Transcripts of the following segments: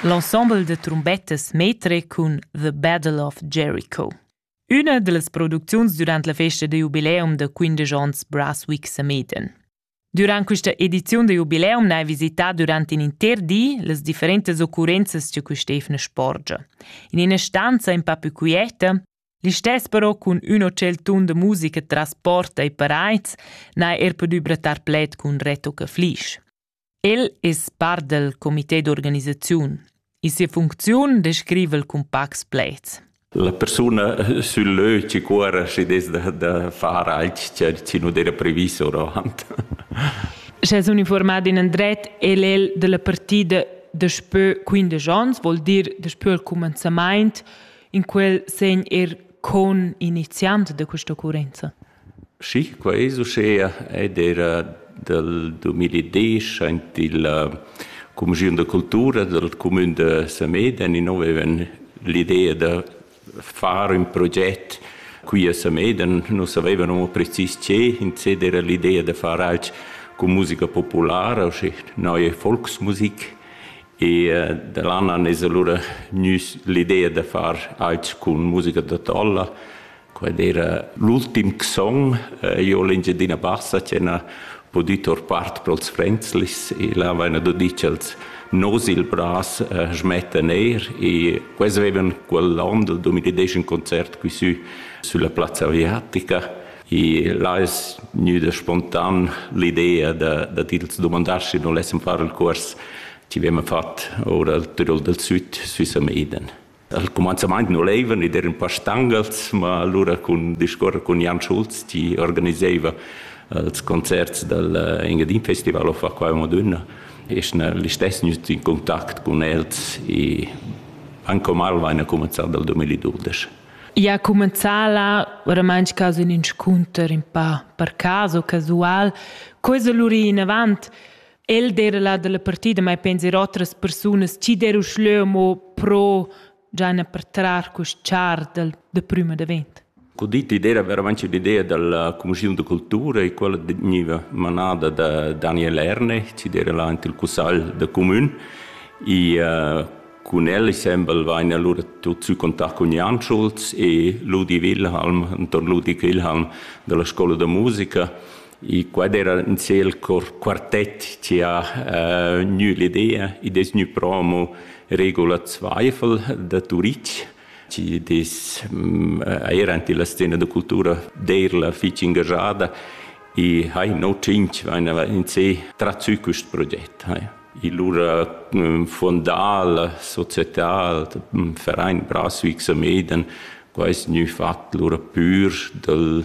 L'ensemble de trombettas metre cun The Battle of Jericho. Üna dellas producziuns durant la festa da jubileum da 15 ans Brasswick Sameden. Durant questa edizione da jubileum n'hai visità durant in inter di las differentas occurrenzas che quest'efna sporgia. In ina stanza in pa più quieta, Listess però cun ün hotel tun de musica tras porta e paraids n'ha er pudü brattar pled cun Reto Caflisch. El es part dal comité d'organisaziun. In sia funcziun descriva el cun pacs pleds. La persuna sul lö ci cuorra schi des da, da far alch chi, chi non era previs oravant. Sche es uniformat in andret, el el della partida daspö 15 ans, vuol dir daspö il comenzamaint, in quel segn er con iniziant de questa occorrenza. Schi, quai es uschea ed eira dal dumiladiesch aint illa cumischiun da cultura dal cumün da Samedan inno vaivan l'idea da far ün proget qui a Samedan. Nus savaivan amo precis che, insè d'eira l'idea da far alch cun musica populara, uschi neue Volksmusik e da lan an es alura gnüs l'idea da far alch cun musica da tolla. Quel era l'ultim song. Eh, io l'Engiadina Bassa che ha pudü tor part pro'ls Fränzlis e là vaina do dit ch'els nos il bras eh, schmettan eir e quels avevan quell'on del 2010 un concert qui sü sulla Piazza Aviatica e là es gnüda spontan l'idea da, da tils domandar schi non lessem far il cuors chi vema fat ora al Tirol del Süd sü Sameden. Al cumanzamaint nu laivan ed eran pa stangas, ma lura cun discuorrer cun Jan Schulz chi organisaiva ils concerts dal Engadin Festival of Acqua Madonna, es gnà listess gnüt in contact cun els e anche mal vaina cumanzà dal 2012. Ia ha cumenzà là oramaing quasi ün inscunter ün pa per cas o casual. Co es lura inavant? El d'era la dalla partida mai penser otras persunas chi der uschleu mo pro giana per trar quest char dal de prüma davent. Cu dit idea veramente l'idea della commissione di cultura e quella veniva manada da Daniel Ernech, ci era là il cussal de comune e uh, con el sembel vain allora tot sü contact con Jan Schulz e Ludi Wilhelm, intorno Ludi Wilhelm della scuola de musica E quad era in ciel cor quartett che ha uh, gnü l'idea, id es gnü promo Regula Zweifel da Turitg, che des, mm, era ante la scena da cultura d'eir la fich ingajada e hai no cinc vainava in sé trazü quist proget. Hai. E lura mm, fondal, societal, mm, Verein Braswijk Sameden, quai es gnü fat lura pür dal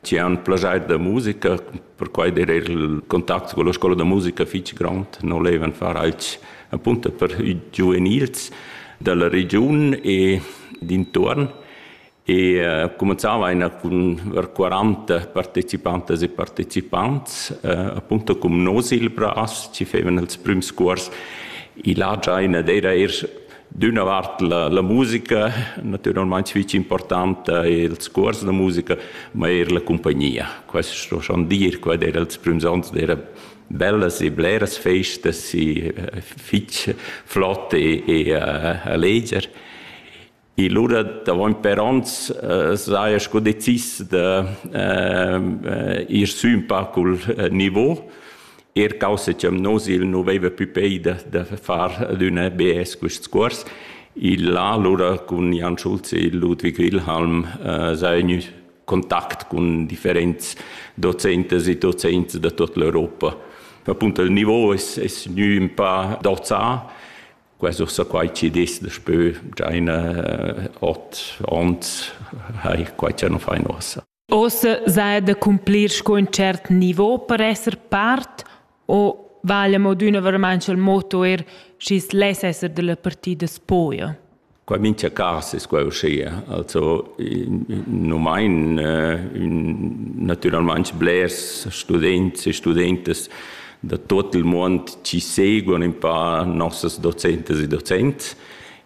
Ti han plaschair da musica, perquai era il contact con la scola da musica fitg grond, non levan far altg appunto per i giuvenils dalla regiun e dintuorn e eh, cumanzava einer cun ver 40 partecipantas e partecipants, eh, appunto cum nos il bras, ci fevan els prüms cuors. I la giaina era er d'üna vart la, la musica natüralmaing fich importanta e ils cuors da musica, ma eir la cumpagnia. Quest sto schon dir, quai era ils prüms ons d'era bellas e bleras festas e fich flott e, e alleger. E lura davant per ons uh, saja sco decis da uh, ir sü un pa cul uh, niveau Eir causa cha nus il nu veiva pü peida da far ad üna BS quist cuors. Il là alura cun Jan Schulz e Ludwig Wilhelm s'ha gnü contact cun differents dozentas e dozents da tuot l'Europa. Appunto il nouv es es gnü ün pa dozà. Quai ussa quai chi'd es daspö già ina ot ons hai quai cha nu fain uossa. Ossa sai da cumplir sco in cert niveau per esser part o vaglia mo d'üna veramaing cha'l motto eir schi's less esser da la partida spuoja? Qua mincha cas es quai uschia. Also nu main natüralmaing blers students e studentas da tuot il muond chi seguan ün pa nossas docentas e docents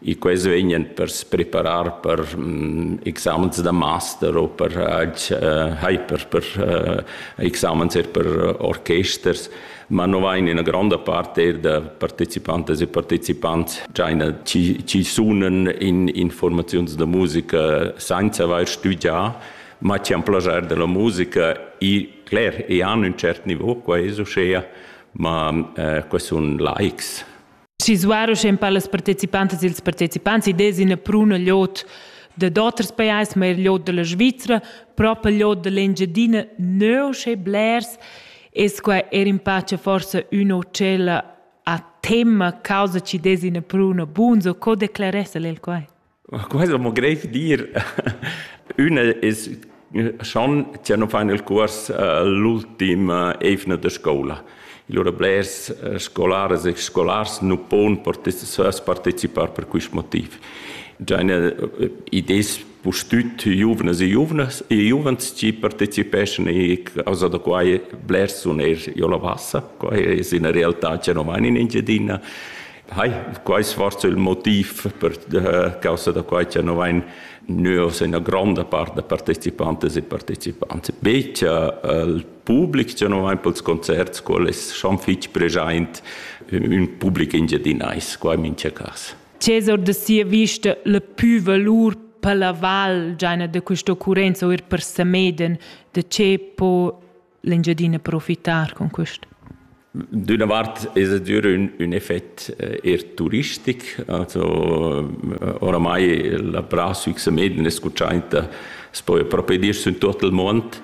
e quels vegnan per se preparar per mm, examens da master o per uh, hyper per uh, examens er per orchesters ma no vain ina gronda parte da partecipantas e partecipants già ina ci, ci sunen in informaziuns da musica senza aver studià ma ci han plagiar della musica e cler e han un cert niveau qua es uschea ma eh, questi sono likes Sisuar uschè per las partecipantas e ils partecipants id es üna pruna lod dad oters pajais, ma eir lod da la Svizra, propa lod da l'Engiadina, nö uschè blers es quai eir in pace forsa üna utschella a temma causa chi dess üna pruna buns o co decleress el quai? Quai es amo greiv dir. Ün es schon cha no fan il cuors l'ultima eivna da scoula. Lura blers scolaras e scolars nu pon partecipar per quist motiv. Già üna id es pustüt giuvnas e giuvnas e giuvens chi partecipeschan e causa da quai blers sun eir giò la Bassa. Quai es üna realtà cha no vain in Engiadina Hai, quai svarso il motiv per eh, causa da quai che no vain nus ina gronda part da partecipantes e partecipants. Becia eh, il public che no vain pels concerts, qual es schon fitg preschaint un public engiadinais, quai mincha cas. Cesar de sia vista le più valur per la val giaina de questa occurenza o er per Sameden, de ce po l'Engiadina profitar con quest? D'una vart es adür ün, ün effet eh, eir turistic, also eh, oramai la Pra Süchse Meden escuchainta s'po propi dir sün tot il mond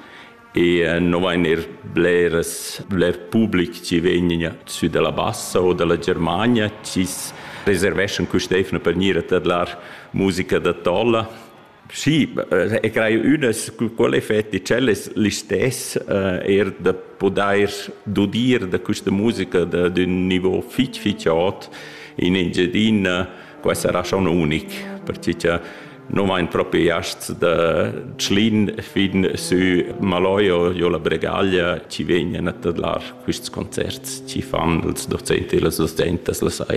e eh, non vain eir bleras, bler public chi vegn sü dalla Bassa o dalla Germania, chi reserveschan quist'efna per gnir a tadlar musica da tolla Sì, e eh, crai ünas quelle effetti cellas listess uh, er da podair dudir da questa musica d'un niveau fich fich aut in Engiadina qua sarà schon unic perché che non vain propriast da Tschlin fin sü Maloio jo la Bregaglia ci vegnan a tadlar quists concerts ci fan els docenti e las docentas la sai.